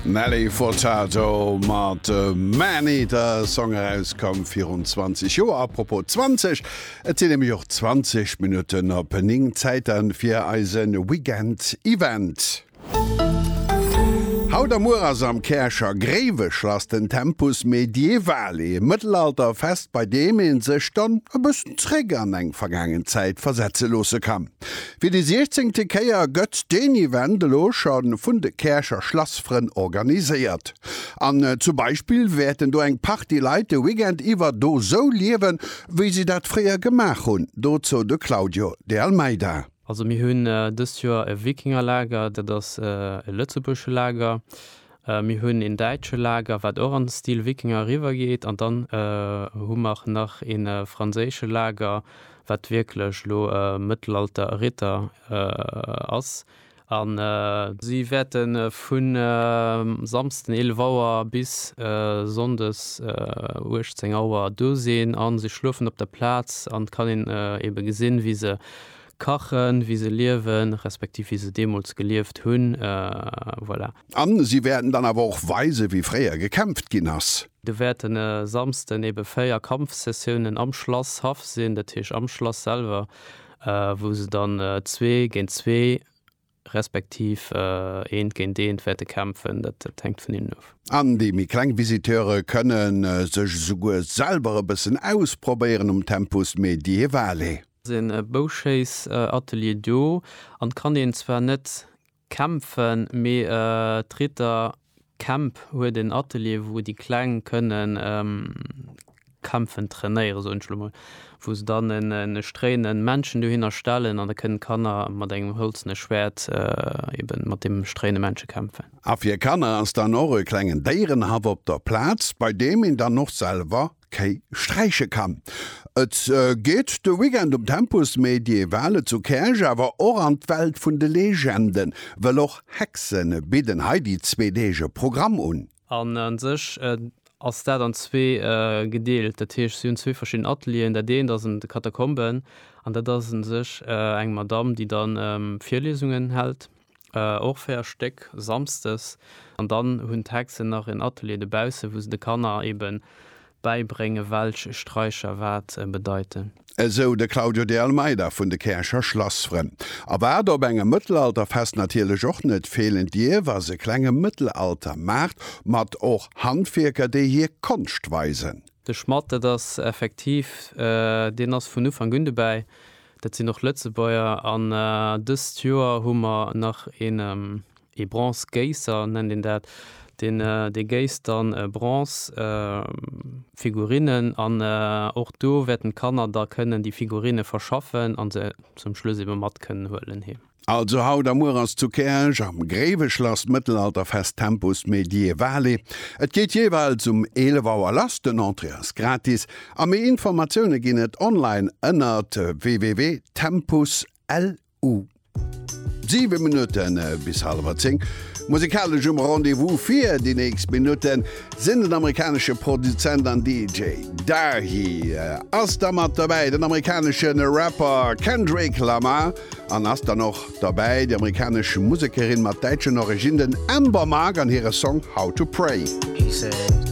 Nelly Furtado mat Man Eater, e Song erauskomm virun 20 Joer. Apropos 20, et sinn nämlech och 20 Minutten op 9, Zäit dann fir eise Weekend Event. Haut a muer ass am Käercher Gréiweschlass den Tempus Medievale, e Mëttelalterfest, bei deem ee sech dann e bëssen zeréck an eng vergaangen Zäit versetze loosse kann. Fir déi siechzéngte Kéier gëtt deen Event elo scho vun de Käercher Schlassfrënn organiséiert. An zum Beispill wäerten do eng Partie Leit de Weekend iwwer do sou liewen, wéi si dat fréier gemaach hunn, dozou de Claudio De Almeida. Also mir hunn dëst Joer e Wikingerlager, dat ass e lëtzebuergesche Lager. Mir hunn een däitsche Lager, wat och an Stil Wikinger eriwwergeet, an dann hu mer nach ee franséische Lager, wat wierklech elo Mëttelalter Ritter ass. A. Si wäerte vu Samsden 11 Auer bis Sonndes 18 Auer do sinn a se schlofen op der Plaz. An et kann een eebe gesinn, wéi se kachen, wéi se liewen, respektiv wéi se deemools gelieft hunn. Voilà. An si wäerten dann awer och weisen, wéi fréier gekämpft ginn ass. Do wäerten e Samsden ebe véier Kampfsessiounen am Schlasshaff sinn, dat heesch am Schlass selwer, wou se dann zwee géint zwee, respektiv eent géint eent wäerte kämpfen. Dat hänkt vun hinnen of. An déi méi kleng Visiteure kënne sech esouguer selwer e bëssen ausprobéieren um Tempus Medievale. Ass en Bouschéissatelier do an kann een zwar net Kämpfen, mee d'Ritter Camp huet en Atelier wou déi Kleng kënnen kämpfen trainéieren, soen ech elo mol, wou se dann e stréinen Männchen dohinner stellen an da kënnen d'Kanner mat engem hëlzene Schwäert eben mat deem stréine Männche kämpfen. A fir Kanner ass dann och e klengen Déierenhaff op der Plaz, bei deem een dann och selwer Kéi sträiche kann. Et geet de Weekend um Tempus Medievale zu Käerch awer och an d'Welt vun de Legenden, wëll och Hexe bidden hei déi zwee Deeg e Programm un. An a sech ass dat an zwee gedeelt, dat heescht si hunn zwee verschidden Atelieren. Dat eent ass an de Katakomben an dat ass u sech eng Madamm, déi da Virliesungen hält. och fir e Stéck samsdes an dann hunn d'Hexen nach en Atelier de bausse wou se de Kanner eben bäibréngen welch Straicher wat bedeiten. Esou de Claudio de Almeida vun de Käercher Schlassfrënn. A wat op engem Mëttelalterfest natierlech och net feelen dierf ass e klenge Mëttelaltermaart mat och Handwierker déi hir Konscht weisen. De Schmadd, dat ass effektiv, deen ass vun Ufank un dobäi. Dat sinn och Lëtzebuerger. An dëst Joer hu mer nach een ee Bronzegéisser, nennt een dat, deen dee géisst dann Bronzefigurinnen. An och do wäerten d'Kanner da kënnen déi Figurine verschaffen a se zum Schluss ebe mat kënnen huelen heem. Also haut a muer ass zu Käerch am Gréiweschlass d'Mëttelalterfest Tempus Medievale. Et geet jeeweils um 11 Auer lass, den Entrée ass gratis a méi Informatioune ginn et online ënnert www.tempuslv. 7 Minutte bis halewer 10. Musikalesch um Rendez-vous fir déi nächst Minutten sinn den amerikanesche Produzent an DJ Dahi. Ass da mat dobäi den amerikanesche Rapper Kendrick Lamar. an ass dann och derbäi d'amerikanesch Musekerin mat däitschen Originnen Amber Mark an hire Song How to Pray.